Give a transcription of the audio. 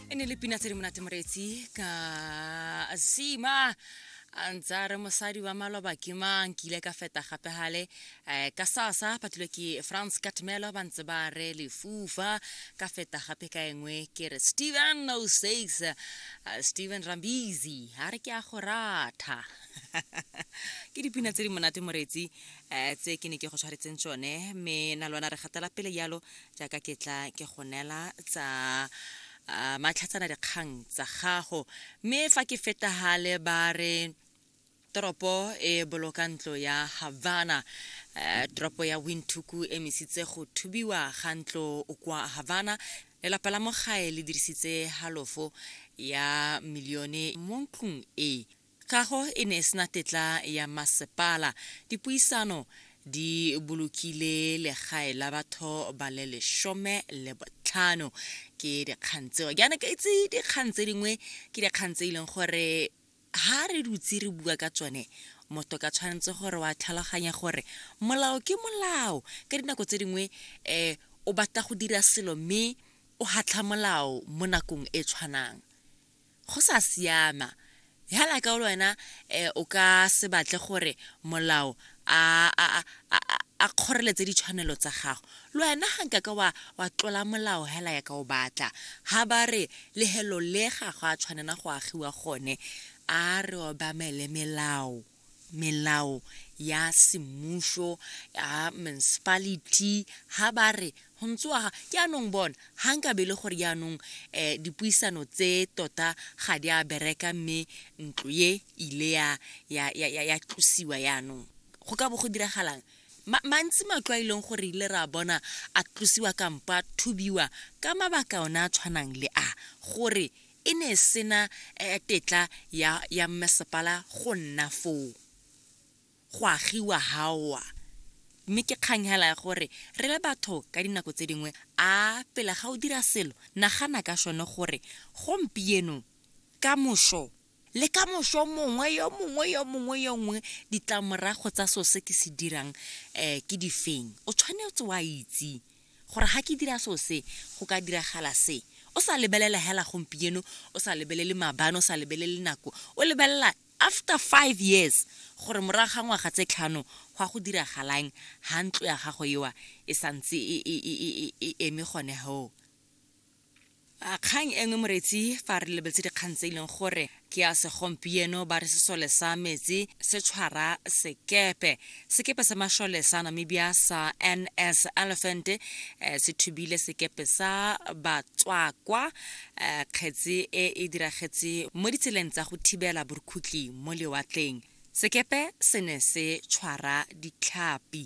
e ne le pina tse di monate moretsi ka sima a ntse a re mosadi wa maloba ke mang ke ile ka feta gape gale um ka sasa phathilwe ke france katmelo ba ntse ba re lefufa ka feta gape ka engwe ke re steven no says uh, steven rambizi a re ke a go ratha ke dipina tse di monate moretsi um tse ke ne ke go tshwaretseng tsone mme na lwana re gatela pele yalo jaaka ke tla ke go neela tsa uh, matlhatsana dikgang tsa gago mme fa ke fetagale ba re toropo e boloka ntlo ya havana uh, toropo ya windhoeku e mesitse go thubiwa ga ntlo kwa havana lelapa la mogae le dirisitse halofo ya milione mo ntlong e Kago e ne e sena tetla ya masepala. Dipuisano di bolokile legae la batho ba le lesome le botlhano. Ke dikgang tseo. Ke ana ke itse dikgang tse dingwe ke dikgang tse e leng gore ha re dutse re bua ka tsone motho ka tshwanetse gore wa tlhaloganya gore molao ke molao ka dinako tse dingwe um o batla go dira selo mme o hatlha molao mo nakong e tshwanang go sa siama hala ka le wena eh, o ka se batle gore molao a a a a kgoreletse ditshwanelo tsa gago le wena ga nka ka wa wa tlola molao hela ya ka o batla ha ba re le helo le ga go a tshwanela go agiwa gone a re obamele melao melao ya semmušo ya municipality ha ba re go ntsoa jaanong bona ga nka be le gore jaanong um dipuisano tse tota ga di a bereka mme ntlo ye ile ya ya ya ya ya tlosiwa jaanong go ka bo go diragalang mantsi matlo a e leng gore ile ra bona a tlosiwa kampa thubiwa ka mabaka one a tshwanang le a gore e ne e sena eh, tetla ya, ya mmasepala go nna foo go agiwa gaoa mme ke kgang hela ya gore re le batho ka dinako tse dingwe a pele ga o dira selo nagana ka sone gore gompieno ka moso le ka moso mongwe yo mongwe yo mongwe yo nngwe ditlamorago tsa so se ke se dirang um ke difeng o tshwanetse wa itse Gore ha ke dira so se, go ka diragala se. O sa lebelela hela gompieno, o sa lebelele mabane, o sa lebelele nako. O lebelela after five years, gore morago ga ngwaga tse tlhano, go a go diragalang ha ntlo ya gago ewa e santse e, e, e, e, e eme gone hoo. A kgang engwe moretsi fa re lebeletse dikgang tse e leng gore ke ya segompieno ba re sesole sa metsi se tshwara sekepe sekepe sa mashole sa namibia sa ns elephant eh, se thubile sekepe sa batswakwa eh, kgetsi e e diragetse mo ditseleng tsa go thibela borukhutlhi mo lewatleng sekepe se ne se tshwara ditlhapi